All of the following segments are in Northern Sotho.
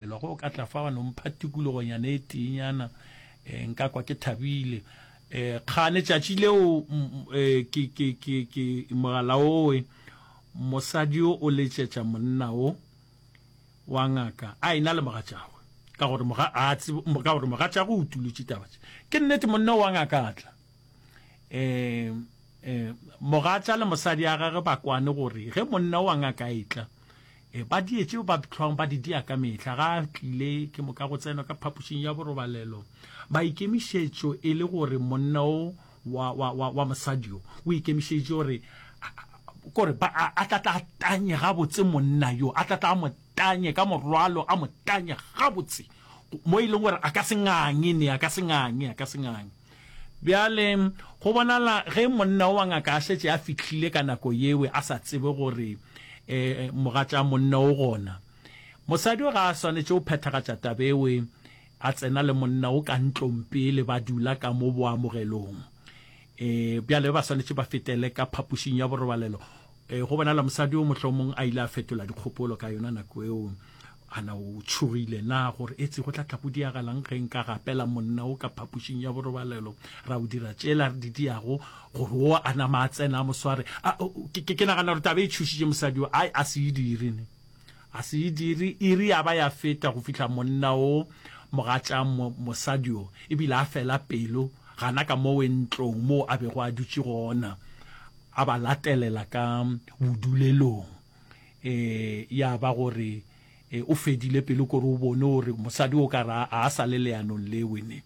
Ge o ka tla fa wa no mpha tikologonyana e teenyana, eh, nka kwa ke thabile. Eh, kgane tšatši leo eh, ke, ke, ke, ke mogala owe mosadi o o letšetša monna o wa ngaka a ena le mogatšagwe ka gore moga a tsebe ka gore mogatšagwe o tulutše taba tše ke nnete monna wa ngaka a tla eh eh mogatša le mosadi a gage ba kwane gore ge monna wa ngaka a etla E, ba die tšeo ba hlwang ba di dia ka mehla. Ga a tlile ke moka go tsenwa ka phapošing ya borobalelo. Maikemišetšo e le gore monna o wa, wa, wa, wa mosadi o o ikemišeditše gore kore ba a, a tla tla tanye gabotse monna yo a tla tla mo tanye ka morwalo a mo tanye gabotse mo e leng gore a ka se nganye ne a ka se nganye a ka se nganye Bjale, go bonala ge monna o wa ngaka a šetše a fihlile ka nako yewe a sa tsebe gore e, mogatša monna o gona. Mosadi o ga a swanetše go phethagatša tabewe a tsena le monna o ka ntlong pele ba dula ka mo boamogelong. E, bjale ba swanetše ba fetele ka phapošing ya borobalelo E, go bonala mosadi o mohlomong a ile a fetola dikgopolo ka yona nako eo a na o tshogile na gore etse go tla tla go diagalang ge nka gapela monna o ka phapošing ya borobalelo ra o dira tsela re di diago gore o a nama a tsena a mosware ke nagana gore taba e tšhusitše mosadi o a se e direne A se e dire iri ya ba ya feta go fihla monna o mogatša mo, mosadi o e bile a fela pelo gana ka mo wentlong moo a bego a dutše gona, a ba latelela ka bodulelong. E, ya ba gore e, o fedile pelo kore o bone gore mosadi o ka re a a sa le leanong le wene.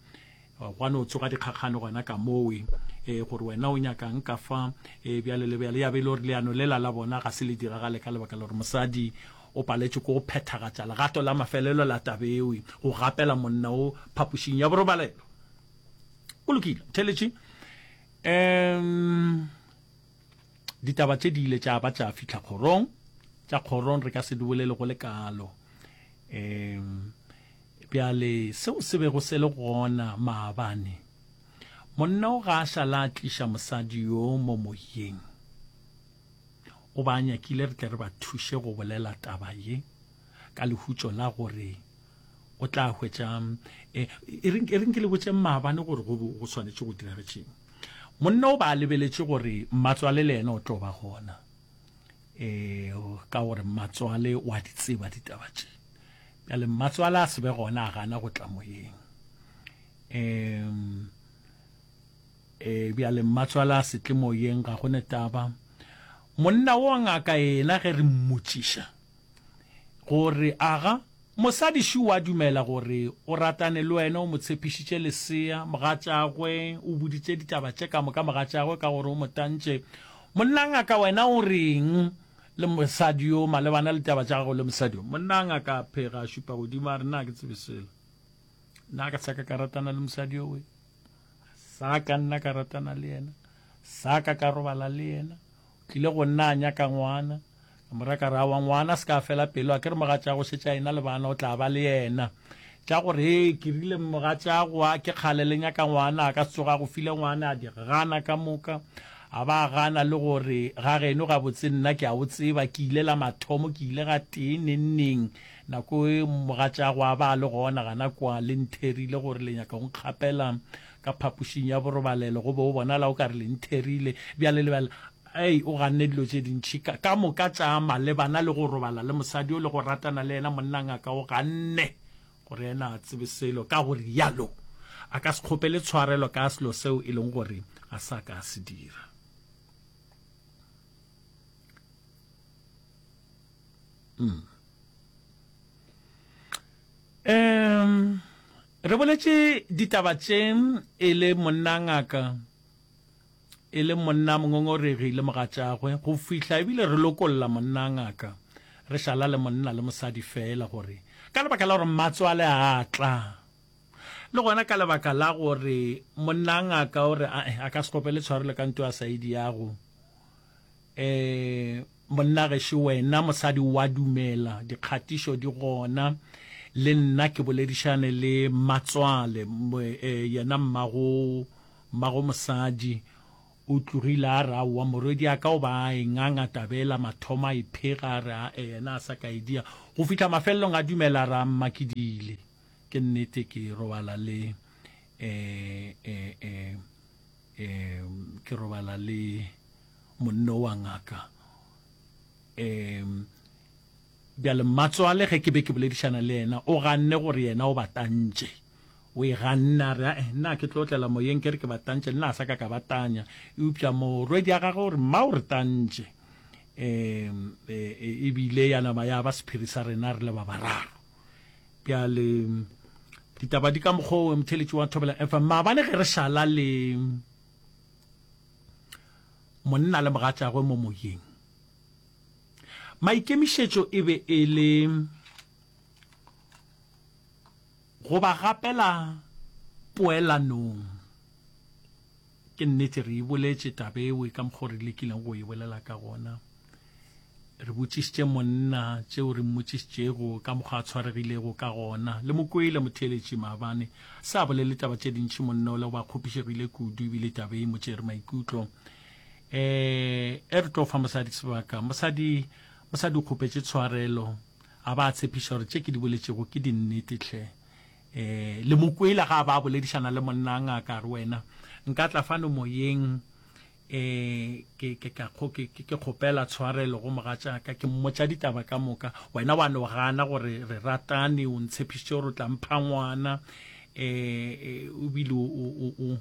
Gwa no tsoga dikgakgano gona ka moo, ee, gore wena o nyakang ka fa, ee, bjalo le bjalo. Ya be e le gore leano lela la bona ga se le diragale ka lebaka la gore mosadi o paletšwe ke go phethagatša legato la mafelelo la taba eo, go gapela monna wo phapošing ya borobalelo. Go lokile, ntheletše. Um, ditaba tše di ile tša ba tša fihla kgorong. Tša kgorong re ka se di bolele go le kalo. Um, Bjale, seo se bego se le gona maabane, monna o ga a šala a tliša mosadi yo mo moyeng. O ba a nyakile re tle re ba thuše go bolela taba ye, ka lehutšo la gore o tla hwetša. E, e re, e re nke le botšeng maabane gore go, go swanetše go diragetšeng. Monna o ba a lebeletše gore mmatswale le yena o tlo ba gona, e, ka gore mmatswale o a di tseba ditaba tše. Bjale mmatswala a se be gona a gana go tla moyeng. Um, e, bjale mmatswala a se tle moyeng ga go ne taba. Monna wo ngaka yena ge re mmotšiša gore aga mosadi šu wa dumela gore o ratane le wena o mo tshepišitše lesea mogatšagwe o buditše ditaba tše ka moka mogatšagwe ka gore o mo tantše monna ngaka wena o reng Le mosadi yo, malebana le taba tša gago le mosadi yo, monna a ngaka a phega a šupa godimo a re, Nna ke tsebe selo. Nna ka sa ka ka ratana le mosadi yo we. Sa ka nna ka ratana le yena. Sa ka ka robala le yena. O tlile go nna a nyaka ngwana. Ka mora ka re, Awa ngwana se ka fela pelo, a ke re mogatša go šetša yena le bana, o tla ba le yena. tša gore he ke rile mmoga tša goa ke kgale le nyaka ngwana a ka se tsoga go file ngwana a di gana ka moka a ba gana le gore ga geno ga botse nna ke a o tseba ke ile la mathomo ke ile ga tee nenneng nako e mmoga tša goa ba le gona gana kwa le ntherile gore le nyaka go nkgapela ka phapošing ya borobalelo go be o bonala o ka re le ntherile bjale lebala Ai, o ganne dilo tše dintši ka, ka moka tša malebana le go robala le mosadi yo le go ratana le yena. Monna ngaka o ganne gore yena ga a tsebe selo, ka go realo a ka se kgopele tshwarelo ka selo seo e leng gore ga sa ka a se dira. Mm. Um, re boletše ditaba tše e le monna ngaka e le monna mongongoregi le mogatšagwe go fihla ebile re lokolla monna ngaka, re šala le monna le mosadi feela gore ka lebaka la gore mmatswale a tla, le gona ka lebaka la gore monna ngaka o re a-e a ka se kgopele tshwarelo ka nto ya saidi yago, e. Monna gešo wena mosadi wa dumela dikgatišo di gona le nna ke boledišane le mmatswale yena mmago mmago mosadi o tlogile a re aowa morwediaka o ba a e nganga taba ela mathomo a e phega a re ae yena a sa ka e dia go fihla mafelelong a dumela a re a mma ke diile ke nnete ke robala le eh eh eh eh ke robala le monno wa ngaka um bjale mmatswale ge ke be ke boledišana le yena o ganne gore yena o batantše o e ganne a re ae eh, nna ke tlo tlela moyeng ke re ke batantše nna a sa ka ka batanya eupša morwedi ya gagwe gore mma o re tantše um ebile e, e ya nama ya ba sephiri sa rena re le ba bararo bjale ditaba di ka mokgwa o motheletši wa thobela efa maabane ge re šala le monna le mogatšagwe mo moyeng maikemišetšo e be e le go ba gapela poelanong ke nnete re e boletše tabewe ka mokgwa re lekileng go e bolela ka gona Re botšišitše monna tšeo re mmotšišitšego ka mokgwa a tshwaregilego ka gona. Le mo kwele motheeletši maabane. Sa a bolele taba tše dintši monna o le go ba kgopišegile kudu ebile taba e mo tšere maikutlo. E, e re tlo fa mosadi sebaka. Mosadi, mosadi o kgopetše tshwarelo. A ba a tshepiša gore tše ke di boletšego ke dinnete hle. E, le mo kwele ga a ba a boledišana le monna a ngaka a re wena nka tla fano moyeng E, ke, ke, ka, go, ke, ke kgopela tshwarelo go mogatšaka, ke mmotša ditaba ka moka. Wena wa no gana gore re ratane, o ntshepišitše gore o tla mpha ngwana, e, e, o bile o, o, o,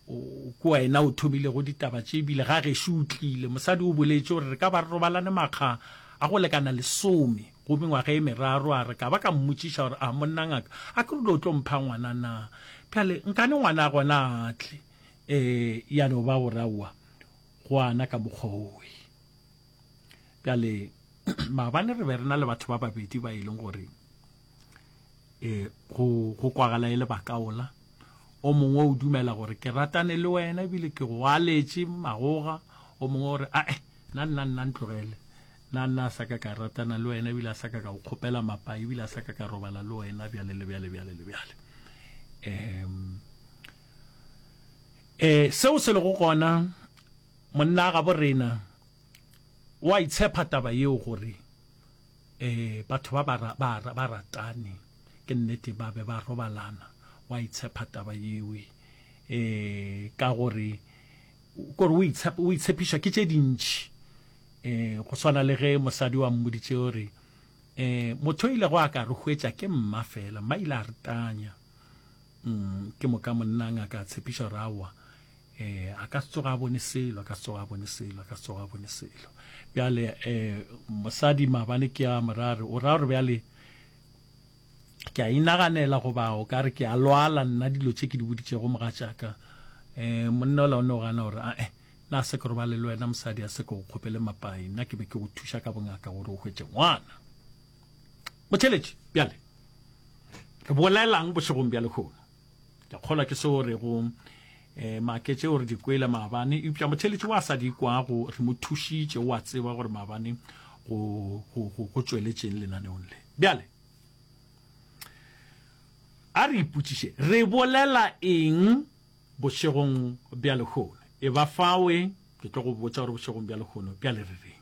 o, ke wena o thomilego ditaba tše, ebile ga gešo o tlile. Mosadi o boletše gore re ka ba re robalane makga a go lekana lesome go mengwaga e meraro, a re ka ba ka mmotšiša gore a monna ngaka, a ke rule o tlo mpha ngwana na. Bjale nkane ngwana gona a tle. E ya no ba go raua gwana ka mokgwa owe. Bjale, maabane re be re na le batho ba babedi ba e leng gore e, go, go kwagala e le bakaola. O mongwe o dumela gore ke ratane le wena ebile ke go aletše magoga. O mongwe o re, ae, nna, nna, nna ntlogele. Nna, nna a sa ka ka ratana le wena ebile a sa ka ka go kgopela mapai ebile a sa ka ka robala le wena bjale le bjale, bjale le bjale. Um. Ee, seo se lego gona, monna gabo rena o a itshepa taba yeo gore ee, batho ba ba, ba, ba ratane ke nnete ba be ba robalana, o a itshepa taba yeo ee, ka gore kore o itshepa, o itshepišwa ke tše dintši ee, go swana le ge mosadi wa mmoditše o re ee, motho o ilego a ka re hwetša ke mma fela, mma ile a re tanya Mm, ke moka monna ngaka a tshepiša gore aowa eh a ka se tsoga a bone selo a ka se tsoga a bone selo a ka se tsoga a bone selo bjale eh mosadi mabane ke a morare o ra gore bjale ke a inaganela go bao ka re ke a lwala nna dilo tše ke di boditšego moga tšaka eh monna o laone o gana gore a eh na se ke robale le wena mosadi a se ke go kgopele mapai nna ke be ke go thuša ka bongaka gore o hwetše ngwana Motheletši, bjale re bolelang bošegong bja lehono? Ke a kgolwa ke se o rego eh, make tšeo re di kwele maabane eupša motheletši wa sa di kwago re mo thušitše wa tseba gore maabane go, go, go, go tšweletšeng lenaneong le bjale a re ipotšiše re bolela eng bošegong bja lehono e ba fawe ke tlo go botsa gore bošegong bja lehono bjale re reng